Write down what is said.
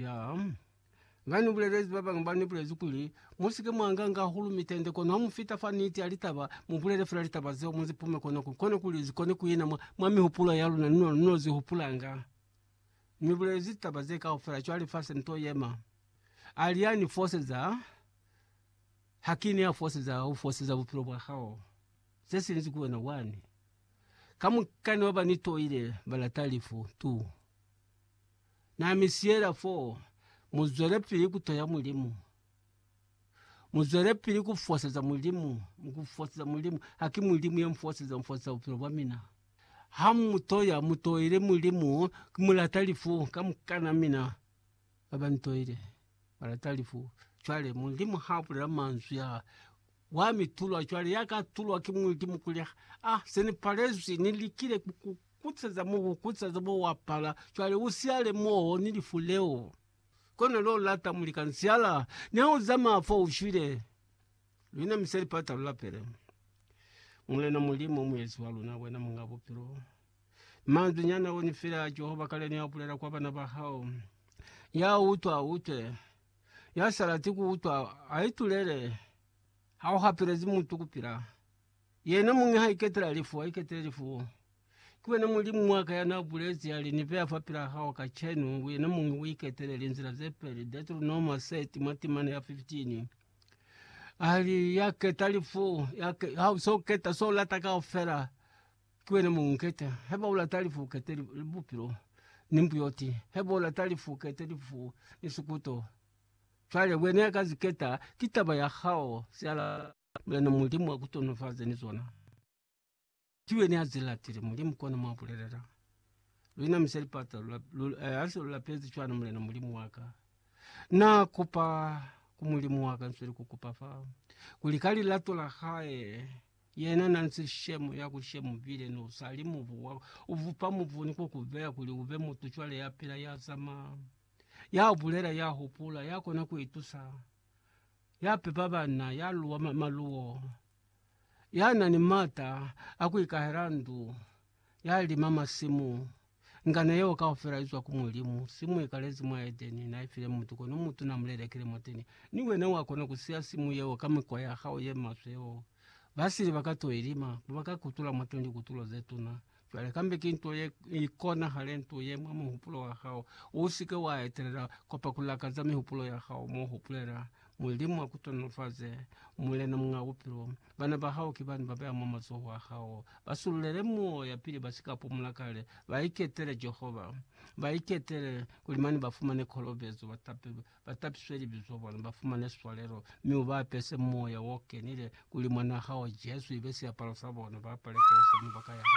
Ya, Na ni bulelezi ba bangi ba ni bulezi kuli, Mu si ke mwa nganga hahulu mitende, kono ha mu fita fa niti ya litaba, mu bulele fela litaba zeo, mu zi pume kona ku, kona kuli zi kone ku ina mwa, mwa mihupulo ya luna, ni no, ni no zi hupulanga. Ni bulezi litaba ze kaufela, cwale fa se ni to yema. A li, Ya ni foseza, ha ki ne ya foseza, u foseza bupilo bwa hao. Se sinzi ku wena wani. Kamukana ba ba ni toile, ba lata lifu, tu. Na mi siyela fo, mu zwelepili ku toya Mulimu. Mu zwelepili ku foseza Mulimu, ku foseza Mulimu. Ha ki Mulimu ya nfoseza, nfoseza bupilo bwa mina. Ha mu toya, mu toile Mulimu, ki mu lata lifu ka mukana wa mina. Ba ba ni toile, ba lata lifu. Cwale Mulimu ha bulela manzwi a, wa mi tulwa cwale, ya ka tulwa ki Mulimu kuli, Ah, se ni palezwi, ni likile ku ku Kutseza mubu, kutseza bo wapala, cwale usiale moo ni lifu leo. Kono lo lata muli ka nsiala, niha uzamaya fo ushwile, luna mi se lipata lu lapele. Mulena Mulimu, Muezi wa luna, wena Muñ'a Bupilo, manzwi nyana o ni file a Jehova kale ni a bulela kwa bana ba hao. Ya utwa a utwe, ya sa lati ku utwa a itulele, ha u hapelezi mutu ku pila. Yena muñi ha iketela lifu, a iketele lifu. Ki wena Mulimu wa ka ya n'a bulezi, ya li, Ni beya fapil'a hao kacenu, wena muñi u iketele linzila ze peli. Deuteronoma 30, mwa timana ya 15. A li, Ya keta lifu, ya ke, ha u s'o keta s'o lata kaufela, ki wena muñi u keta. Haiba u lata lifu, u kete li, li bupilo, ni mbuyoti. Haiba u lata lifu, u kete lifu, ni sikuto. Cwale wena ya ka li keta, ki taba ya hao, se a lata. Yena Mulimu a ku tonofaze ni zona. Ki wena ya zi latile, Mulimu, kona mwa bulelela. Lu inamisa lipata, lu, lu, eh, hase lu lapezi cwana, Mulena Mulimu wa ka. Na kupa ku Mulimu wa ka, nsweli ku kupa fa, kuli ka lilato la hae, yena na nsi shemo ya ku shemo bile no sali mubu wa, u vupa mubu ni ku ku beya kuli ube mutu cwale ya pila, ya zama, ya bulela, ya hupula, ya kona ku itusa. ya pepa bana, ya luwa ma- maluwo, ya na ni mata a ku ikahela ndu, ya lima masimu. Ngano yeo kaufela izwa ku Mulimu. Simu ikalezi mwa Edeni, na ifile mutu, kono mutu na mulelekile mwateni. Ni wena wa kona ku siya simu yeo ka mikwa ya hao ye maswe yeo. Basili ba ka to ilima, ba ka kutula mwateni likutulo ze tuna. Cwale kambe ki nto ye ikonahale nto ye mwa muhupulo wa hao. U si ke wa etelela kwapa ku lakaza mihupulo ya hao mo hupulela. Mulimu a ku tonolofaze, Mulena Muñ'a Bupilo. Bana ba hao ki bani ba beya mwa mazoho a hao. Ba sululele muoya pili ba si ka pumula kale. Ba iketele Jehova. Ba iketele, kuli mane ba fumane kolobezo, ba tapelwe, ba tapiswe libizo, bona, ba fumane swalelo, mi u ba apese Moya o Kenile, kuli Mwan'a hao Jesu ibe siapalo sa bona, ba apale Kreste mwa baka ya hao.